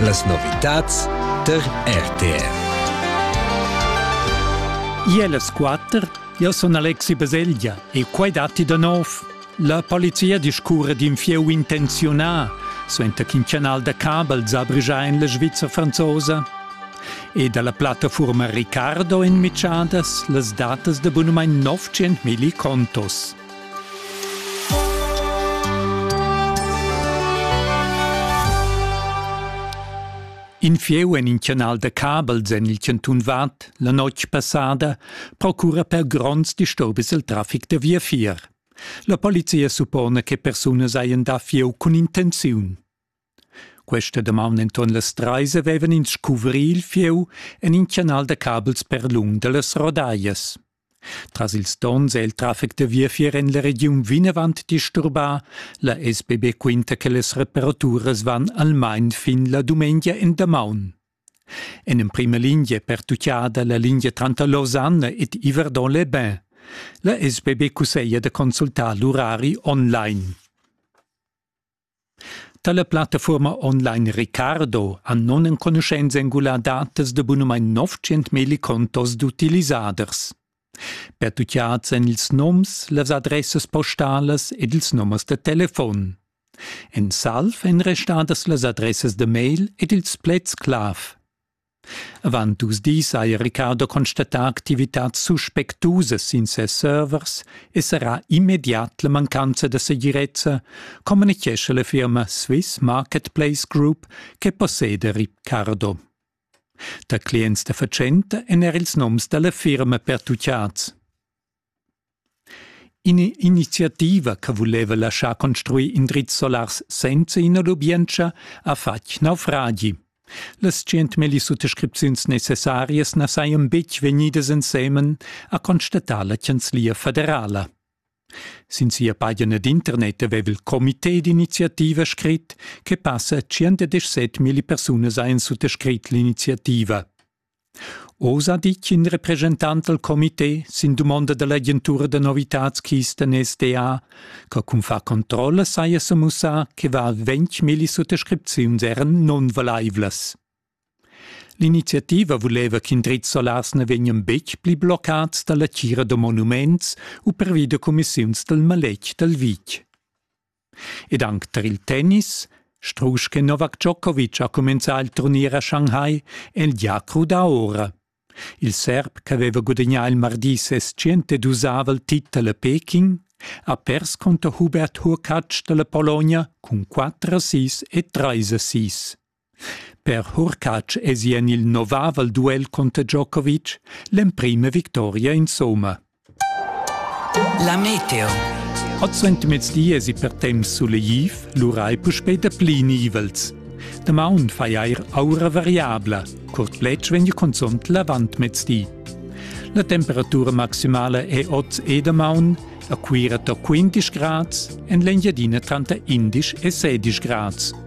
Las novitads tar RTR. Ier las quatter, io sun Alexi Baselgia e quai datti da nov. La polizia discurre d'in fieu intenziunà, suenter ch'in canal da cabel zabrigia en la Svizra franzosa. E dalla plattaforma Ricardo en Michadas las datas da bunumain 900.000 contos. In fieu en in canal da cabels en il cantun Vad la notg passada procura per gronds disturbis il traffic da viafier. La polizia suppona che persunas hajan da fieu cun intenziun. Questa damaun enton las treis havevan ins scuvrir il fieu en in canal da cabels per lung dallas rodaias. Tras ils donns è il traffic da viafier en la regiun vinavant disturbà. La SBB quinta che las reparaturas van almain fin la dumengia en damaun. En emprima linea pertuccada la linea tranter Lausanne ed Yverdon-les-Bains. La SBB cusseglia da consultar l'urari online. Tala plattafuorma online Ricardo ha non enconuschenza engular datas da bunamain 900.000 contos d'utilisaders. Pertucciats èn ils noms, las adressas postalas ed ils numers da telefon. En salv èn restadas las adressas da mail ed ils pleds clav. Avant dus dis ha il Riccardo constatà activitads suspectusas sin ses servers e serrà immediat la mancanza da segirezza, communitgescha la firma Swiss Marketplace Group che posseda Riccardo. Da clients da fatschenta èn er ils noms da la firma pertutgads. In'iniziativa che vuleva laschar construir indrizs solars senza ina lubientscha ha fatg naufragi. Las tschientmilli suttascripziuns necessarias na sajan betg vegnidas ensemen, ha constatà la chanzlia federala. Sin sia pagina d'internet aveva il comité d'iniziativa scrit che passa 117 milli persunas hajan suttascrit l'iniziativa. Oz ha ditg in represchentant dal comité sin dumonda da l'agentura da novitads Kisten SDA che cun far controlla saja semussà che var ventg milli suttascripziuns eran nunvalaivlas. L'iniziativa vuleva ch'in drizz solars na vegnan betg pli bloccads da la tgira da monuments u pervi da cumissiuns dal maletg dal vitg. Ed anc tar il tennis, strusch che Novak Djokovic ha cumenzà il turnier a Shanghai, è el gia crudà ora. Il serb ch'aveva gudagnà il mardi ses tschentedusavel titel a Peking ha pers cunter Hubert Hurkacz da la Pologna cun 4 a 6 e 3 a 6. Per Hurkacz esi en il novavel duel cunter Djokovic l'emprima victoria insumma. La Meteo. Oz suentermezdi esi per temps suleiv, lura ei puspei da pli nivels. Damaun fai eir aura variabla, curt pletg vegn consont l'avantmezdi. La temperatura maximala è oz e damaun a Cuira da 15 grads, en l'Engiadina tranter 11 e 16 grads.